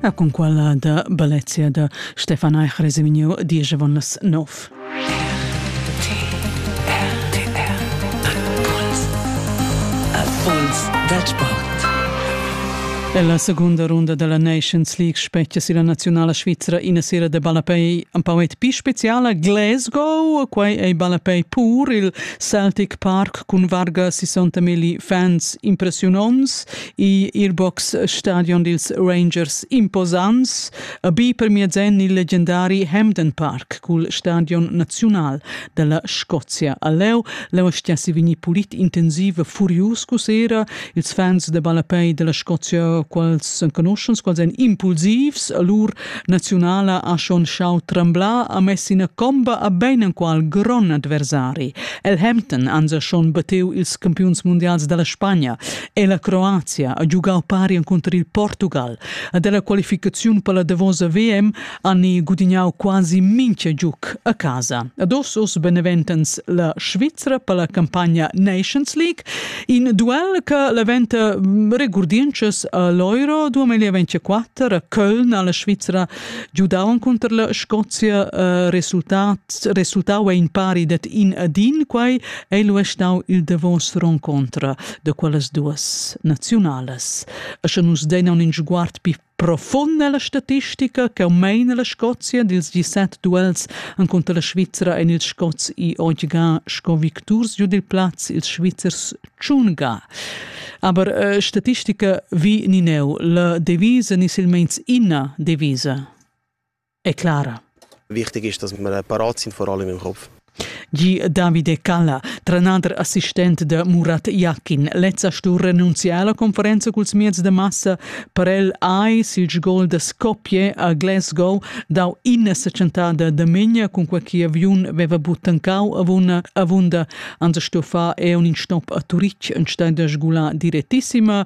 A con quella da Balezia da Stefan Eich resemigno Diegevon las Nov. Puls da sport. La segunda runda della Nations League specchia si la nazionale svizzera ina sera de ballapei un pauet più speciale Glasgow, quei ei ballapei pur il Celtic Park cun varga 60.000 fans impressionons i Earbox Stadion dils Rangers imposants, a bi per mezzen il leggendari Hampden Park cul stadion nazional della Scozia a Leu. Leu stiassi vegni pulit intensiv furius cusera, ils fans de ballapei della Scozia, quals conoschens, quals ein impulsivs, lur nazionala ha schon schau tremblar a messina comba a ben enqual gron adversari. El Hampton ansa schon bateu ils campiuns mondials della Spagna è la Croazia ha giugau pari encunter il Portugal a della qualificaziun per la Davosa VM hanno gudignau quasi mincha giuc a casa. Ad os beneventens la Svizzera per la campagna Nations League, in duel che leventa mm, regurdiences all'Euro 2024 a Köln alla Svizzera giudavan contro la Scozia uh, resultat resultau in pari det in ad in quai ei lu stau il Davos roncontra. da quellas duas naziunalas. E sche nus dein un sguard più profund nella statistica che meina la Scozia dils 17 duels enconter la Svizzera en il Scots i oggi sco victurs giu dil plaz ils Svizzers Tschunga. Aber äh, statistica vi ni neu la devisa ni silmeins ina devisa. è clara. Wichtig ist, dass wir parat sind, vor allem im Kopf. Gi Davide Calla, trenader assistent de Murat Iakin, lezza stu renunziar alla conferenza culs mieds de massa per el ai sil gol de Skopje a Glasgow dau inna seccentada de megna cun qualche aviun veva buttancau avunda avunda anze stu fa e un in stop a Turic en stein de sgula direttissima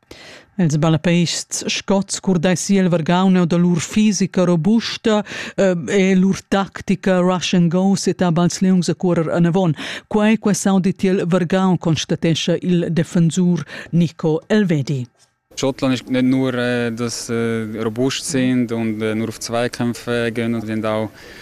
Els balapeists scots curdessi el vargauneu da lur fisica robusta eh, e lur tactica rush and go seta bals leungs a cuorer anavon. Quei quei saudi tiel vargaun constatescha il defensur Nico Elvedi. Schottland ist nicht nur, äh, dass äh, robust sind und äh, nur auf Zweikämpfe gehen und auch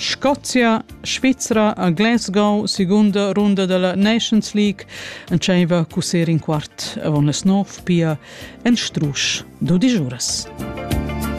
Scozia, Svizra a Glasgow, segunda runda della Nations League, entscheiva cuser in quart avon las nov pia en strusch dudisch uras.